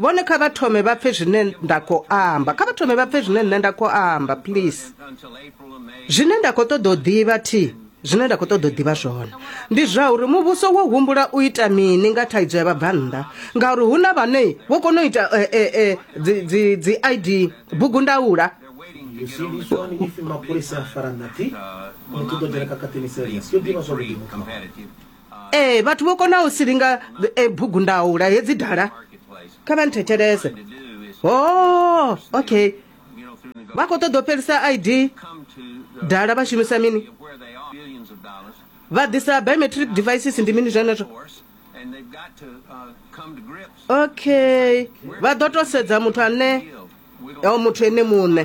vhone kha vha thome vha pfe zwine nda khou amba kha vha thome vha pfe zwine nṋe nda khou amba please zwine nda khou ṱoḓa u ḓivha thi zwine nda khou ṱoḓa u ḓivha zwone ndi zwa uri muvhuso wo humbula u ita mini nga thaidzo ya vhabvannḓa ngauri hu na vhane vho kona u ita eh, eh, eh, dzi i d bugu ndaula mapholisa a fara nati muthu ḓo dzhena kakatini serious yo ḓivha zwa vhuḓi muthu ee vhathu vho konaho u silinga e, bugundaula hedzi dala kha vha nthetshelese ho oh, okay vha khou ṱoḓa u fhelisa id dala vha shumisa mini vha ḓisa biometric devices ndi mini zwenezwo okay vha ḓo to sedza muthu ane o muthu ene muṋe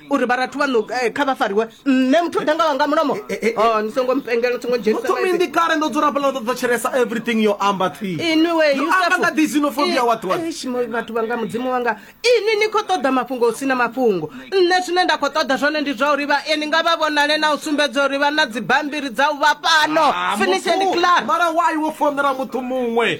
uri vharathu vhaṋu eh, kha vha fariwe nṋe muthu o dangawa nga mulomo eh, eh, oh, ni songo mpengela ni songo dzhenisatominḓi kale ndo dzula fhala ndo thetshelesa everything yo amba thwiiamba nga disinophobia watwathu vhanga mudzimu wanga ini ni khou ṱoḓa mafhungo hu si na mafhungo nṋe zwine nda khou ṱoḓa zwone ndi zwa uri vhaeni nga vha vhonale na u sumbedza uri vha na dzibambiri dza u vha fhano ah, finisheni clamara wai wo fonela muthu muṅwe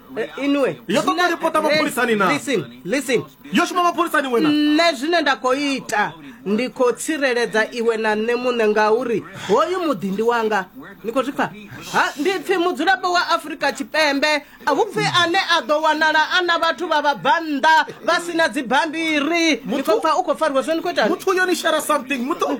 Eh, inwe Yo ṱoḓa zwine- ripota mapholisani na? Listen, listen. yo shuma mapholisani wena nṋe zwine nda khou ita ndi khou tsireledza iwe na nṋe muṋe ngauri hoyu muḓi ndi wanga ni khou zwi pfa ha ndi pfi mudzulapo wa afurika tshipembe a hu pfi ane a ḓo wanala a na vhathu vha vhabvannḓa vha si na dzibammbiri ni khou pfa u khou fariwa zwo ni khou ita muthu yo ni share something muthu